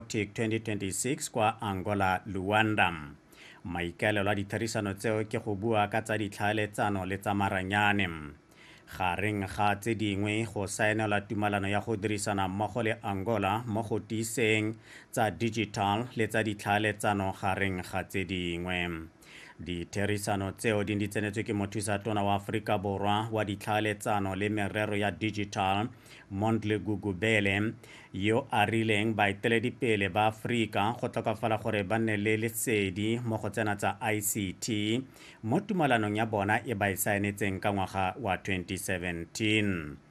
Arctic 2026 kwa Angola, Luanda. Maikaelelo a ditherisano tseo ke go bua ka tsa ditlhaeletsano le tsa maranyane. Gareng ga tse dingwe go saenelwa tumalano ya go dirisana mmogo le Angola mo go tiiseng tsa digital le tsa ditlhaeletsano gareng ga tse dingwe. Ditherisano tseo di di tsenetswe ke mothusa tona wa Aforika Borwa wa ditlhaeletsano le merero ya digital Mondli Gugubele yo a rileng baeteledipele ba Aforika go tlhokafala gore ba nne le lesedi mo go tsena tsa ICT mo tumalanong ya bona e ba e saenetseng ka ngwaga wa 2017.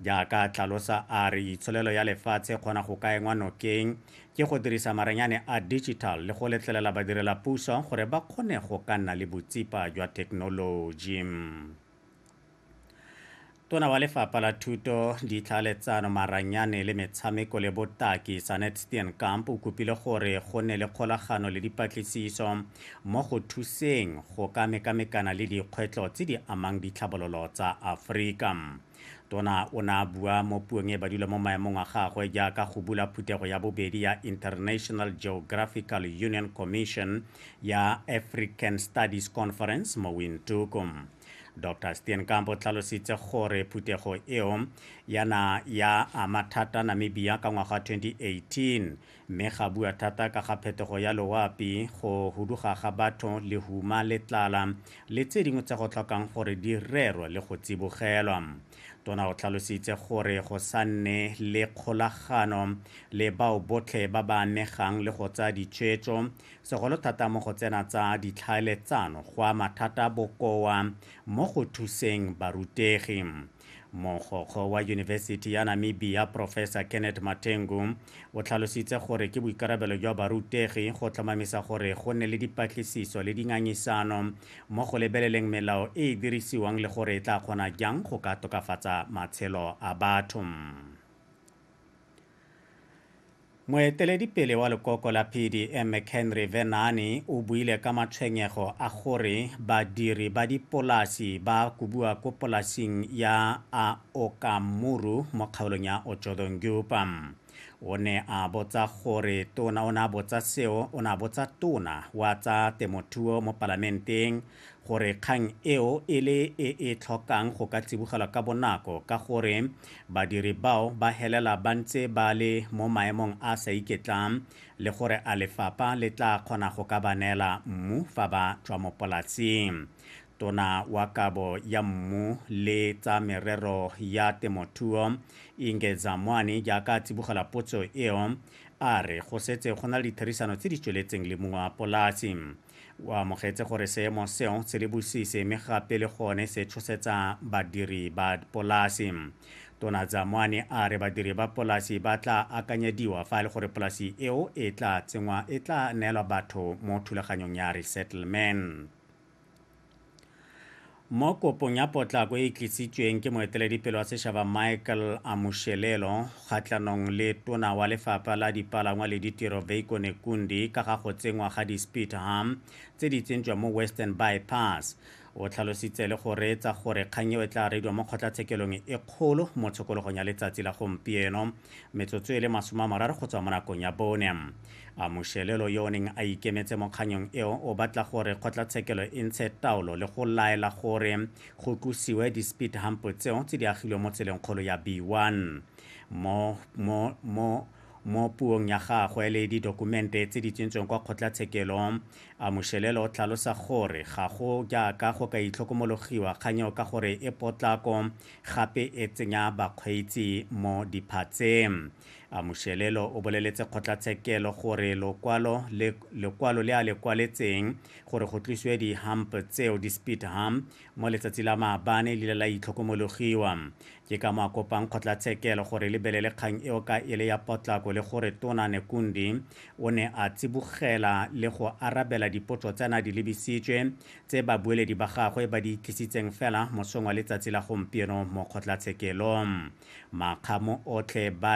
Jaaka a tlalosa a re itsholelo ya lefatshe kgona go ka engwa nokeng ke go dirisa marenyane a digital le go letlelela badirela puso gore ba kgone go ka nna le botsipa jwa thekenoloji. Tona wa lefapha la thuto, ditlhaeletsano, maranyane le metshameko le botaki Sanet Steenkamp o kopile gore go nne le kgolagano le dipatlisiso mo go thuseng go ka mekamekana le dikgwetlho tse di amang ditlhabololo tsa Aforika. Tona o ne a bua mo puong e badula mo maemong a gagwe jaaka go bula phuthego ya bobedi ya International Geographical Union Commission ya African Studies Conference mo Windhoek. Dr. Steenkamp o tlhalositse gore phuthego eo yana ya ama thata Namibia ka ngwaga 2018 Mme ga bua thata ka ga phetogo ya loapi, go huduga ga batho, lehuma le tlala, le tse dingwe tse go tlhokang gore di rerwe le go tsibogelwa. Tona o tlhalositse gore go sa nne le kgolagano le bao botlhe ba ba amegang le go tsaya ditshwetso, segolo thata mo go tsena tsa ditlhaeletsano, go ama thata bokoa mo go thuseng barutegi. mogokgo wa yunibesithi ya namibia professor kenneth matengu o tlhalositse gore ke boikarabelo jwa barutegi go tlhomamisa gore go nne le dipatlisiso le dingangisano mo go lebeleleng melao e e dirisiwang le gore e tla kgona jang go ka tokafatsa matshelo a batho Moeteledipele wa lekoko la PDM McHenry Vhennani o buile ka matshwenyego a gore badiri ba dipolasi ba kobiwa ko polasing ya a Okamuru mo kgaolong ya Otjodongyupa. O ne a botsa gore tona o ne a botsa seo o ne a botsa tona wa tsa temothuo mo palamenteng gore kgang eo e le e e tlhokang go ka tsibogelwa ka bonako ka gore badiri bao ba helela ba ntse ba le mo maemong a sa iketlang le gore a lefapha le tla kgona go ka ba neela mmu fa ba tswa mo polasing tona wa kabo ya mmu le tsa merero ya temothuo inge zamwani jaaka a tsibogela potso eo a re go setse go na le ditherisano tse di tsweletseng le mongwe wa polasi O amogetse gore seemo seo se le bosisi mme gape le gone se tshosetsa badiri ba polasi. Tona Dzamwane a re badiri ba polasi ba tla akanyediwa fa e le gore polasi eo e tla tsenngwa e tla neelwa batho mo thulaganyong ya resettlement. Mo kopong ya potlako e e tlisitsweng ke moeteledipele wa sešaba Michael Amushelelo kgatlhanong le tona wa lefapha la dipalangwa le ditiro Veiko Nekundi ka ga go tsenngwa ga di-speed hump tse di tsentswa mo Western Bypass, o tlhalositse le go reetsa gore kgang eo e tla reediwa mo kgotlatshekelong e kgolo mo tshokologong ya letsatsi la gompieno. metsotso e le masome a mararo go tswa mo nakong ya bone a moshelelo yo o neng a ikemetse mo kganyong eo o batla gore kgotlatshekelo e ntshe taolo le go laela gore go tlosiwe di-speed hump tseo tse di agilwe mo tseleng kgolo ya b1 mo, mo, mo mo puong ya gagwe le didokumente tse di tsentsweng kwa kgotlatshekelo a moshelelo o tlhalosa gore ga go jaaka go ka itlhokomologiwa kganyeo ka gore e potlako gape e tsenya bakgweetsi mo diphatseng. Amushelelo o boleletse kgotlatshekelo gore lokwalo le, lekwalo le a le kwaletseng gore go tlisiwe di-hump tseo di-speed hump mo letsatsi la maabane le la itlhokomologiwa ke ka mo a kopang kgotlatshekelo gore lebelele kgang eo ka e le ya potlako le gore tona nekundi o ne a tsibogela le go arabela dipotso tsena di lebisitswe tse babueledi ba gagwe ba di tlisitseng fela mosong wa letsatsi la gompieno mo kgotlatshekelo. Makgamo otlhe ba